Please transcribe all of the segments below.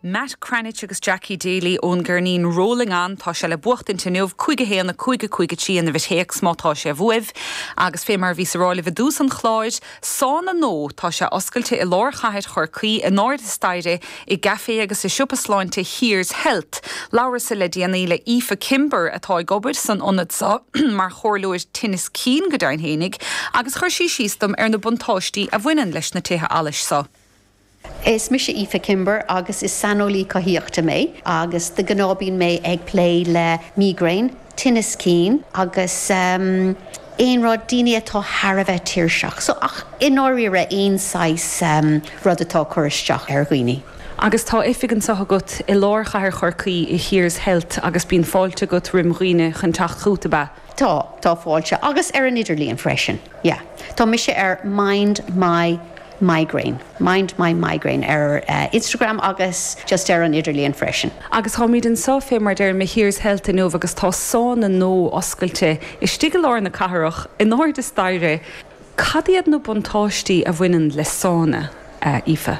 Matt Cranitch agus Jackie Daly ón gceirnín Rolling On. Tá sé le buachaint inniu, cúig a haon a cúig a cúig a trí i bhfoirm téacs má tá sé uaibh. Agus fé mar a bhíos a rá libh i dtús an chláir, sána nua, tá sé oscailte i lár chathair Chorcaí, in airde staighre, i gcaifé agus i siopa sláinte Here's Health. Labhras-sa le déanaí le Aoife Kimber atá ag obair san ionad seo mar chomhairleoir tinnis cinn, go deimhin fhéinig, agus chuir sí síos dom ar na buntáistí a bhaineann leis na tithe allais seo. Is mise Aoife Kimber agus is saineolaí cothaíochta mé agus de ghnáth bíonn mé ag plé le migraine, tinneas cinn agus ehm. aon rud, daoine atá thar a bheith tuirseach. So, ach i ndáiríre aon saghas ehm. rud atá ag cur isteach ar dhaoine. Agus tá oifig anso agat i lár chathair Chorcaí i Here's Health agus bíonn fáilte agat roim dhaoine chun teacht chughat, ab ea? Tá, tá fáilte. Agus ar an idirlíon freisin. Yeah. Tá mise ar Mind My. migraine. Mind my migraine ar Instagram agus just ar an idirlíon freisin. Agus táimid anso fé mar a deirim i Here's Health inniu agus tá sána nua oscailte istigh i lár na cathrach, in airde staighre. Cad iad na buntáistí a bhaineann le sána, a Aoife?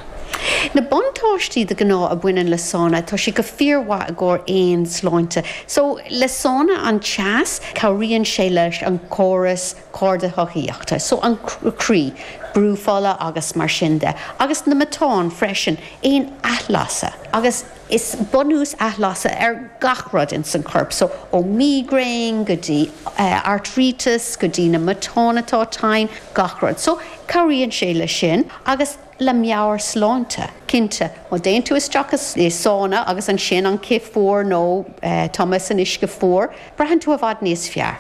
Na buntáistí de ghnáth a bhaineann le sána, tá sé go fíor mhaith i gcomhair aon sláinte. So, le sána an teas, cabhraíonn sé leis an córas cardashoithíoch so an croí, brú fola agus mar sin de, agus na matáin freisin, aon athlasadh, agus is bunús athlasadh ar gach rud ins an corp so, ó mígréin go dtí airtríteas go dtí na matáin atá tinn, gach rud. So, cabhraíonn sé le sin agus le meabhairshláinte, cinnte. Má théann tú isteach i sána agus ansin an cith fuar nó tumadh san uisce fuar, braitheann tú i bhfad níos fearr.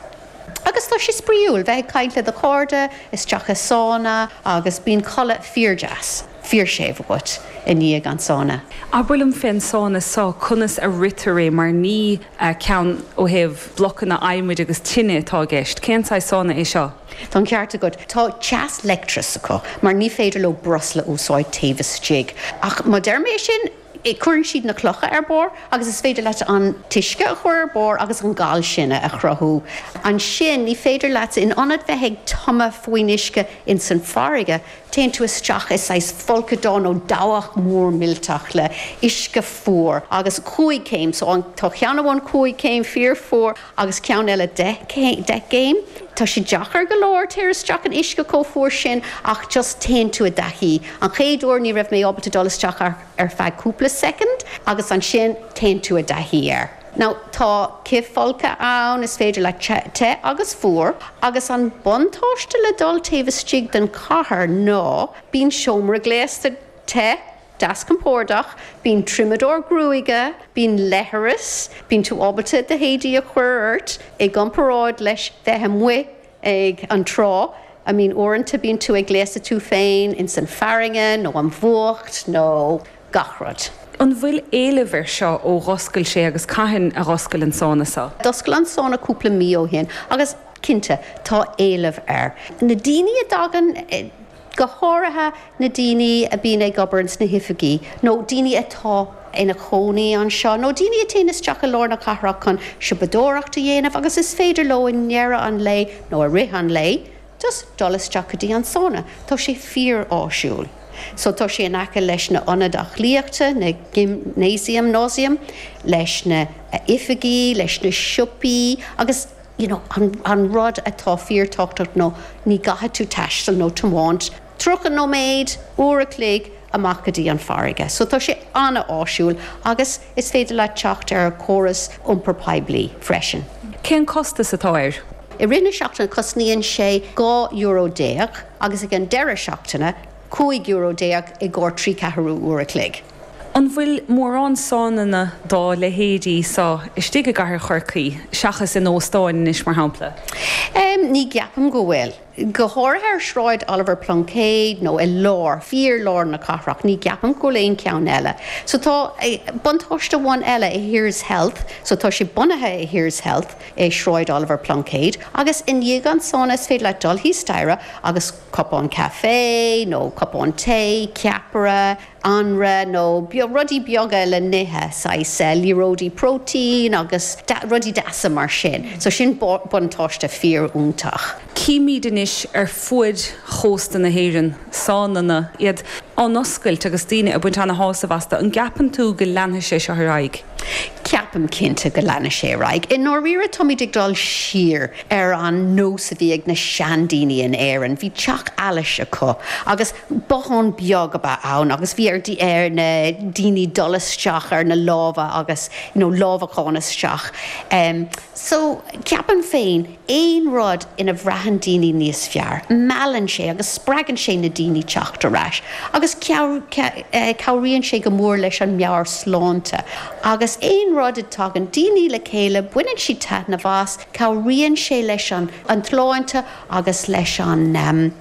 Agus tá sé spraíúil bheith ag caint le do chairde isteach i sána agus bíonn codladh fíordeas, fíorséimh agat i ndiaidh an tsána. Abair liom fén sána so, conas a ritear é mar ní ceann ó thaobh blocanna adhmaid agus tine atá i gceist? Cén saghas sána é seo? Tá an ceart agat, tá teas leictreach acu mar ní féidir leo breosla a úsáid taobh istigh. Ach má deir mé é sin, Cuireann siad na clocha ar barr agus is féidir leat an t-uisce a chur ar barr agus an gal sin a chruthú. Ansin ní féidir leat, in ionad bheith ag tumadh faoin uisce ins an bhfarraige, téann tú isteach i saghas folcadán nó dabhach mór millteach le uisce fuar agus cúig chéim, so tá ceann amháin cúig chéim fíor fuar, agus ceann eile deich céim, deich gcéim, tá sé deacair go leor téir isteach in uisce chomh fuar sin ach just téann tú i dtaithí, an chéad uair ní raibh mé ábalta dul isteach ach ar feadh cúpla soicind agus ansin téann tú i dtaithí air. Now tá cithfholctha ann, is féidir le te agus fuar agus an buntáiste le dul taobh istigh den chathair ná bíonn seomra gléasta te, Deas compordach, bíonn triomadóir gruaige, bíonn leithreas, bíonn tú ábalta do héadaí a chuir ort, i gcomparáid leis bheith amuigh ag an trá, I mean uaireanta bíonn tú ag gléasadh tú féin ins an farraige nó an fuacht nó gach rud. An bhfuil éileamh ar seo ó dhoscail sé agus cathain a dhoscail an sána seo? D'oscail an sána cúpla mí ó shin agus cinnte tá éileamh ar na daoine a dtagann. go háirithe na daoine a bíonn ag obair ins na hoifigí, nó daoine atá ina chónaí anseo, nó daoine a téann isteach i lár na cathrach chun siopadóireacht a dhéanamh agus is féidir leo i ndeireadh an lae, nó i rith an lae, just dul isteach go dtí an sána. Tá sé fíor-áisiúil. So, tá sé in aice leis na hionaid aclaíochta, na gymnasium, gymnasium, leis na oifigí, leis na siopaí agus, you know, an rud atá fíorthábhachtach nó ní gcaithfidh tú taisteal nó tiomáint tríocha nóiméad, uair a chloig amach go dtí an farraige. So tá sé an-áisiúil agus is féidir leat teacht ar an chóras iompair poiblí freisin. Cén costas atá air? I rith na seachtaine cosnaíonn sé dhá euro déag agus ag an deireadh seachtaine cúig euro déag i gcomhair trí ceathrú uair a chloig. An bhfuil mórán sánanna dá leithéidí seo istigh i gcathair Chorcaí, seachas in óstáin anois, mar shampla? Ní cheapaim go bhfuil. Go háirithe ar Shráid Oliver Pluincéid nó i lár, fíorlár na cathrach, ní cheapaim go bhfuil aon cheann eile. So tá buntáiste amháin eile i Here's Health, so tá sé bunaithe i Here's Health i Sráid Oliver Pluincéid agus i ndiaidh an sána is féidir leat dul thíos staighre agus cupán caife nó cupán tae, ceapaire, anraith nó rudaí beaga le n-ithe, saghas liathróidí protein agus rudaí deasa mar sin. So sin buntáiste fíoriontach. Címid anois ar fuaid chósta na hÉireann, sánanna, iad á n-oscailt agus daoine ag baint ana-shásamh astu. An gceapann tú go leanfaidh sé seo ar aghaidh? Ceapaim cinnte go leanfaidh sé ar aghaidh. I ndáiríre táimid ag dul siar ar an nós a bhí ag na seandaoine in Éirinn. Bhí teach allais acu agus. Bothán beag a bhí ann agus bhí ar na daoine dul isteach ar na lámha agus you know lámhacán isteach em so ceapaim féin aon rud ina bhraitheann daoine níos fearr, meallann sé agus spreagann sé na daoine teacht ar ais agus cabhraíonn sé go mór leis an meabhairshláinte agus aon rud a dtagann daoine le chéile baineann siad taitneamh as, cabhraíonn sé leis an tsláinte agus leis an.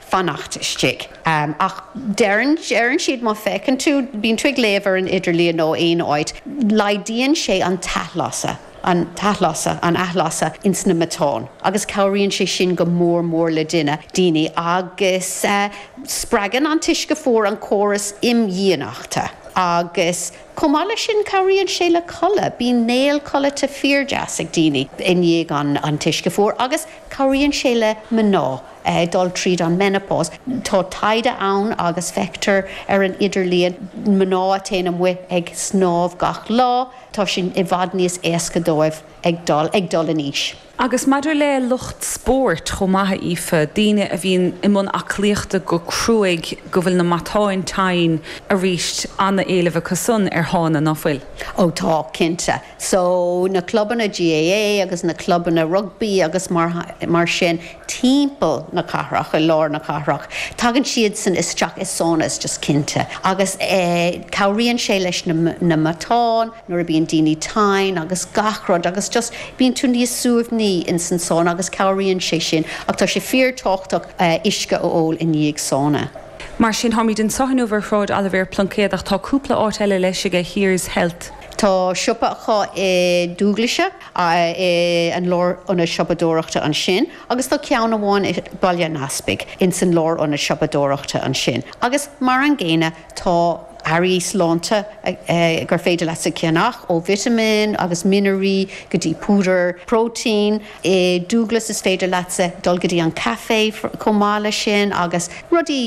fanacht istigh. Ach deireann siad má feiceann tú, bíonn tú ag léamh ar an idirlíon nó aon áit, laghdaíonn sé an t-athlasadh, an athlasadh ins na matáin agus cabhraíonn sé sin go mór mór le duine, daoine agus spreagann an t-uisce fuar an córas imdhíonachta agus chomh maith leis sin cabhraíonn sé le codladh, bíonn néal codlata fíor deas ag daoine i ndiaidh an t-uisce fuar agus cabhraíonn sé le mná ag dul tríd an menopause. Tá taighde ann agus feictear ar an idirlíon mná a téann amuigh ag snámh gach lá, tá sé i bhfad níos éasca dóibh ag dul, ag dul in aois. Agus maidir le lucht spóirt chomh maith, a Aoife, daoine a bhíonn i mbun aclaíochta go cruaidh, go bhfuil na matáin tinn, arís an-éileamh acusan ar shána, an bhfuil? Ó tá, cinnte. So, na clubanna GAA agus na clubanna rugbaí agus mar, mar sin, timpeall na cathrach, i lár na cathrach, tagann siadsan isteach i sánas, just cinnte. Agus eh, cabhraíonn sé leis na, na matáin, nuair a bíonn daoine tinn agus gach rud agus just bíonn tú níos suaimhní insan sána agus cabhraíonn sé sin ach tá sé fíor tábhachtach eh uisce a ól i ndiaidh sána. Mar sin, táimid anseo inniu ar Shráid Oilibhéar Pluincéad ach tá cúpla áit eile leis aige, Here's Health, Tá siopa acu i Dúglaise, in an lárionad siopadóireachta ansin, agus tá ceann amháin i Baile an Easpaig, ins an lárionad siopadóireachta ansin, agus mar an gcéanna tá earraí sláinte gur féidir leatsa a cheannach, ó vitimíní agus mianraí go dtí púdar próitéin. I Dúglas is féidir leatsa dul go dtí an caifé chomh maith leis sin agus rudaí.